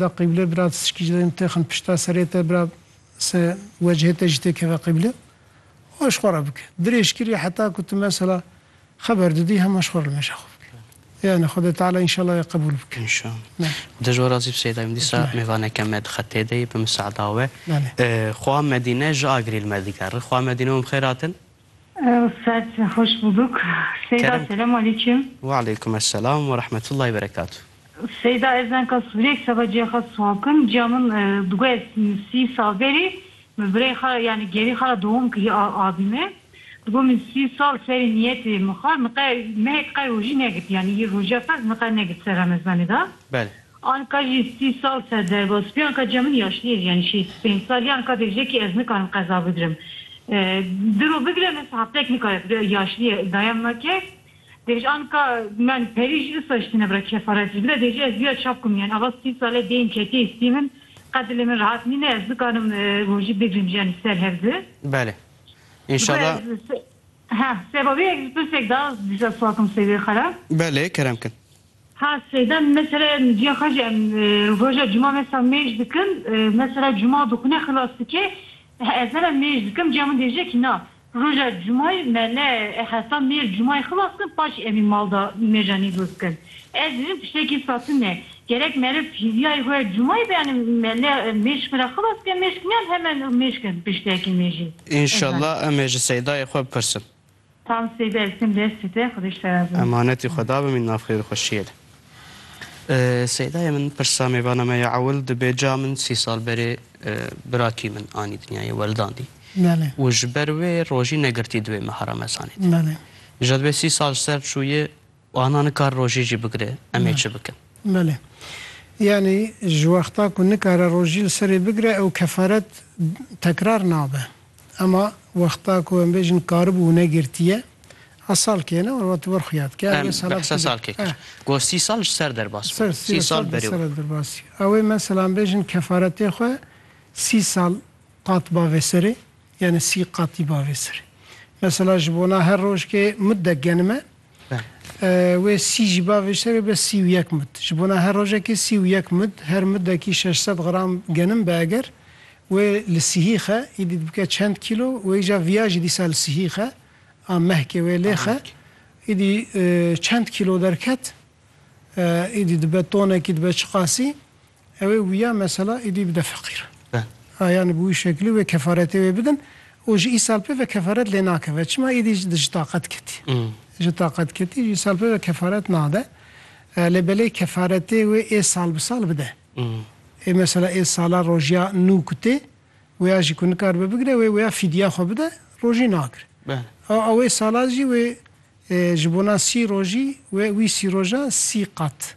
Da qîble bira tişkî ji dayîn texin pişta serê te bira se wecihê te jî tê keve qîble xwe ji xwe re bike. Dirêj kirî heta ku tu mesela xeber didî hema ji xwe re li meja xwe bike. Yanî Xwedê Teala înşallah wê qebûl bike. Xwedê ji we razî bi Seyda Yûndîs a mêvaneke me di xetê de ye bi misada we. Xwe a Medîne ji Agirî li me digere. Xwe a Medîne û min bi xêr hatin. Ustad hoş bulduk. Seyda Kerem. selamu aleyküm. Ve aleyküm esselam ve rahmetullahi ve berekatuh. Seyda ez enka Sûriyek seba ciyê xwe Suhakim. Ciya min e, digo ez sî sal berî min birayê xwe ra yanî gerî xwe ra dewam kirî a- avî me. Digo min sî sal serê niyetê min xwe min qe mehek qe rojî negirt yanî yê roja ferz min qe negirt ser remezanê de. Belê. Anka jî sî sal ser derbas bî, anka ca min yaşlî ye jiyanî şêst û pênc sal ye, anka bêje kî ez nikarim qeza bigirim. Diro bigire min sahaptek nikare bigire, yaşlî ye daya min a ke dêj anka min perî jî disa ji tîne bira kefaret jî bide dêje ez dîya çap kirim yanî ava sî sal e dêyim ketiyê stî min qet dilê min rehat nîne ez nikarim rojî bigirim jiyanî ser hev di. Belê. Înşala. Heh seba wê eger ji pirsek da dîsa swakim sey wê xera. Belê kerem kin. Ha sêdem mesela cîya xwe jî em roja cuma mesela mêj dikim mesela cuma dixwîne xilas dike ez heme mêj dikim cîya min dêje kî na roja cumayê me ne heta mêr cumayê xilas kim paşî em ê mal da mêja nîvroz bikin ez dibînim tiştekî satin e gerek meriv hîvyayê xwe cumayê be yanî me ne mêj xwe re xilas bike mêj kimiyan heme mêj kim tiştekî mêjî. Înşallah em ê ji seydayê xwe bipirsin. Tam sê be Esim lej site Xwedê şera bi. Emanetî Xweda bimîn nav xêr û xweşiyê li. Seydayê min pirsa mêvana me ya ewil dibe ca min sî sal berê birakî min anî dinyayê weldandî û ji ber wê rojî negirtî di wê meha ramezanê de. Ji dibê sî sal ji ser çûyê. Wana nikare rojî jî bigire, em ê çi bikin? Belê. Yanî ji wexta ku nikare rojî li serê bigire ew kefaret tekrar nabe. Ema wexta ku em bêjin karibû û negirtiye, a salkê ne were tu ber xuya dike. Em bi hesa salkê kir. Got sî sal ji ser derbas bû. Sî sal berê were. Ew ê mesela em bêjin kefaretê xwe sî sal qat ba vê serê. Yanî sî qatî ba vê serê. Mesela ji bona her rojkê mudde genime. Wê sî jî ba vê şerê be sî û yek mud. Ji bona her rojekê sî û yek mud, her mudekî şeş sed gram genim be eger wê li sihî xe, îdî dibike çend kîlo wê îja viya jî dîsa li sihî xe a mehkê wê lê xe îdî çend kîlo derket îdî dibe tonekî dibe çiqasî Ew ê wiya mesela êdî bide feqîr. A yanî bi wî şekilî wê kefaretê wê bidin û ji îsal pê ve kefaret lê nakeve. Çima êdî ji taqet ketî. Ji taqet ketî ji îsal pê ve kefaret nade. Lê belê kefaretê wê ê sal bi sal bide. Ê mesela ê sala rojiya nû ku tê wêya jî ku nikaribe bigire wê wêya fîdya xwe bide rojî nakir. A wê sala jî wê ji bona sî rojî wê wî sî roja sî qat.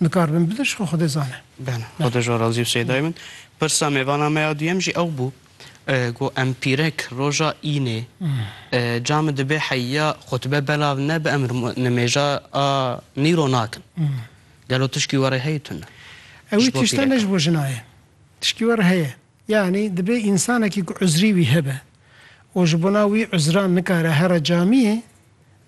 Nikaribin bidir ji xwe Xwedê zane. Bene. Xwedê ji arazî û sêdayê min. Pirsa mêvana me ya duyem jî ew bû ku em pîrek roja înê ca min dibê heyya xutbe belav nebe em nimêja a nîro nakin. Gelo tişkî were heye tune? Ewî tiştene ji bo jina ye. Tişkî were heye. Yanî dibê însanekî ku uzrî wî hebe û ji bona wî uzran nikare here camiyê,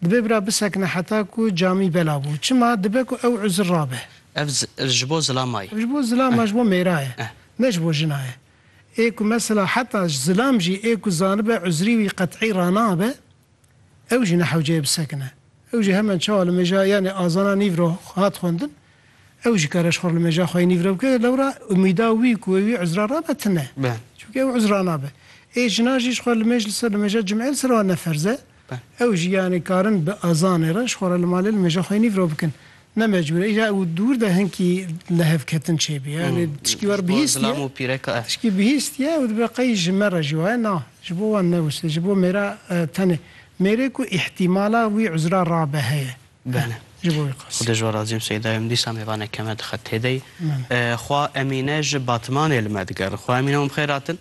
dibê bira bisekine heta ku camî bela bû. Çima? Dibe ku ew uzr rabe. Ev ji bo zilama ye. Ev ji bo zilama, ji bo mêra ye. Ne ji bo jina ye. Ê ku mesela heta zilam jî ê ku zanibe uzrî wî qet'î ranabe, Ew jî ne hewceyê bi sekine. Ew jî hemen çawa li mêja yanê azana nîv re hat xwendin, ew jî kare ji xwe re li mêja xwe yê nîv re bike, lewra umîda wî ku wê wî uzra rabe tune. Çimkî ew uzra nabe. Ê jina jî ji xwe li mêj li ser li mêja cim'ê li ser wan ne ferz e. Ew jî yanê karin bi azanê re ji xwe re li malê li mêja xwe yê nîv re bikin. Ne mecbûr e îcar û dûr de hinkî lihevketin çêbî e. Lê tişkî wer bihîstiye, tişkî bihîstiye û dibe qey ji me re jî waye na, ji bo wan newise, ji bo mêra tenê mêrê ku îhtîmala wî uzra rabe heye. Belê. Ji bo wî qas. Xwedê ji we razî im Seyda em dîsa mêvaneke me dixe têdey. Xwa Emîne ji Batmanê li me digerin. Xwa Emîne wan bi xêr hatin.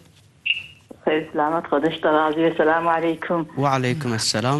Bi xêr selamet, Xwedê ji te razî be. Selamu aleykum. Wa aleykum eselam.